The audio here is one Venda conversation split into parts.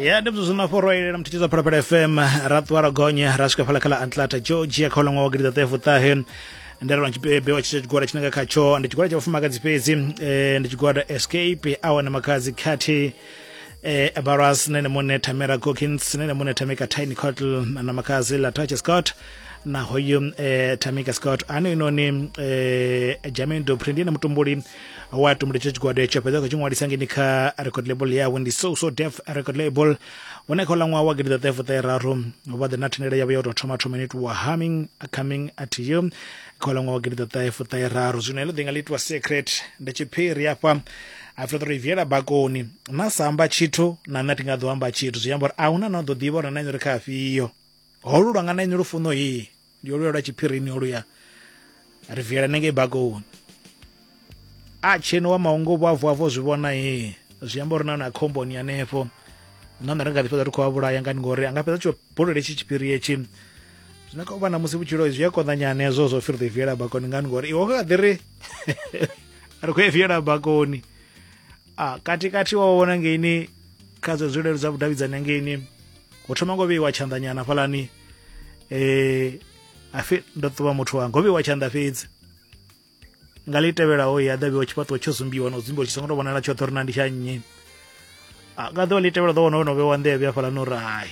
ya ndi mzuzu mafhoro a ilela mthithiza phalaphala fm ra ṱuwa ra gonya ra swika phala khala atlanta georgia kha uḽa ṅwaha wa gidiḓaṱefu ṱahe ndalelwa tshipebe wa tshitshia tshigwada tshine nga khatsho ndi tshigwada tsha vhafumakadzi fhedzi eh, ndi tshigwada escape awana makadzi khathihi eh, abaras nene mune tamera cockins nene mune tamika tiny cottle na makazi latache scott na hoyu eh, tamika scott ano inoni eh, jamin dopri ndiye na mutumbuli wa tumula tsho tshigwada etsho fhedza kha tshi ṅwalisa ngeni kha record label yawe ndi so so def record label hone kha uḽa ṅwaha wa gidiḓaṱahefuṱaheraru vha ḓe na thendelo yavho ya u tou thoma thoma ine itiwa humming coming at you kha uḽa ṅwaha wa gidiḓaṱahefuṱaheraru zwino heḽo ḓinga ḽi itiwa secret ndi tshiphiri afha a fhedza uri viela bakoni na sa amba tshithu na nṋe thi nga ḓo amba tshithu zwi amba uri a huna na ḓo ḓivha uri na inori kha afhiyo holu lwanga na inori funo iyi ndi oluya lwa tshiphirini oluya ri viela nenge bakoni a tsheno wa maungo vho avo avo zwi vhona he zwi amba uri na na khomboni hanefho na nṋe ri nga ḓi fhedza ri khou a vhulaya ngani ngori a nga fhedza tsho bulele tshi tshiphiri etshi zwine kha u vha na musi vhutshilo zwi a konḓanyana hezwo zwo fhiri ḓi viela bakoni ngani ngori iwe kha ḓi ri ri khou e viela bakoni a katikati wa vhona ngeini kha dzo zwilelo dza vhudavhidzani ngeini ho thoma ngo vheiwa tshanḓanyana hafhalani eh afi ndo ṱuwa muthu wanga ho vheiwa tshanḓa fhedzi nga ḽi tevhelaho ya ḓa vheiwa tshifhaṱuwo tsho zumbiwa na u zumbiwa tshi songo tou vhonala tshoṱhe uri na ndi tsha nnyi nga ḓuvha ḽi tevhela ḓo vhona wono vheiwa nḓevhe hafhalani uri hai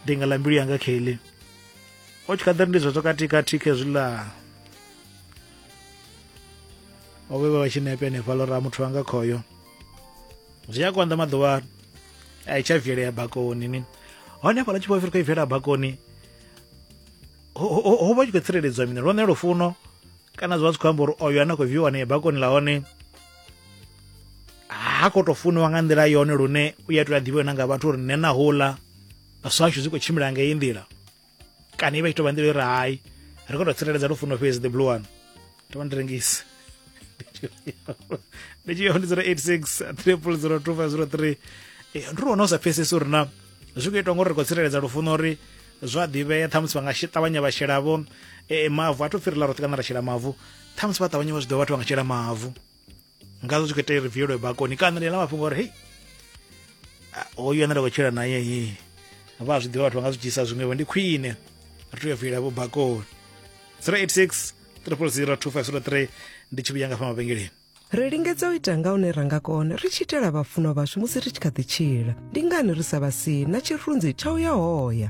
ndi nga ḽa mbilu yanga kheḽi o tshi kha ḓa ri ndi zwezwo katikati khezwiḽa o vhe vha tshi nepe hanefha lora muthu wanga khoyo zwi a konḓa maḓuvha a i tsha vielea bakoni ni hone hafhaḽa tshi khou i viela bakoni ho vha tshi khou tsireledzwa mini lwone lufuno kana zwi vha zwi khou amba uri oyo ane a khou viiwa ne bakoni ḽa hone ha khou tou funiwa nga nḓila yone lune u ya tou a ḓivhiwe na nga vhathu uri nṋe na houḽa vhaswa ashu zwi khou tshimbila nga iyi nḓila kana i vha i tou vha nḓila yo ri hai ri khou tou tsireledza lufuno fhedzi the blue one to vha ndi rengisi ndi tshi yo ndi 086 triple 02 ndi ri wana u sa pfesesi uri na zwi khou itwa ngori ri khou tsireledza lufuno uri zwa ḓivhea ṱhamusi vha nga ṱavhanya vha shelavo e, mavu a to fhirela roṱhe kana ra shela mavu ṱhamusi vha ṱavhanya vha zwi ḓo vhathu vha nga shela mavu ngazwo zwi khou itea ri vielwe bakoni kana ḽi ḽa mafhungo uri hei hoyu ane nda khou tshila naye hii vha zwi ḓivha vhathu vha nga zwi dzhiisa zwiṅwevho ndi khwine ri tea u viela vho bakoni 086 300 2503 ndi tshi vhuya nga fha mavhengeleni ri lingedza u ita nga une ra nga kona ri tshi itela vhafunwa vhashu musi ri tshi kha ḓi tshila ndi ngani ri sa vha si na tshirunzi tsha u ya hoya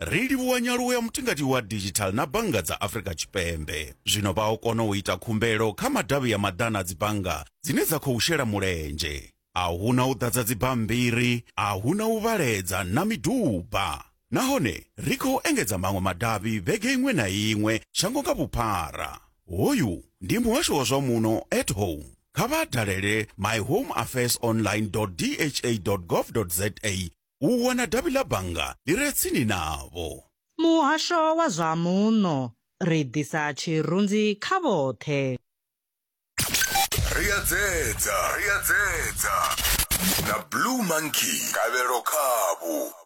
Ri livhuwa nyaluwo ya mutingati wa digital na bannga dza Afrika Tshipembe. Zwino vha o kona u ita khumbelo kha madavhi ya maḓana a dzibannga dzine dza khou shela mulenzhe. A hu na u ḓadza dzibammbiri, a hu na u vhaledza na miduba. Nahone ri khou engedza maṅwe madavhi vhege iṅwe na iṅwe shango nga vhuphara. Hoyu ndi muhasho wa zwa muno at home. Kha vha dalele myhomeaffairsonline.dha.gov.za u wana davhi ḽa bannga ḽi re tsini navho. Muhasho wa zwa Muno, ri ḓisa tshirunzi kha vhoṱhe. Ri a dzedza, ri a dzedza. Na Blue Monkey, Gavhelo khavhu.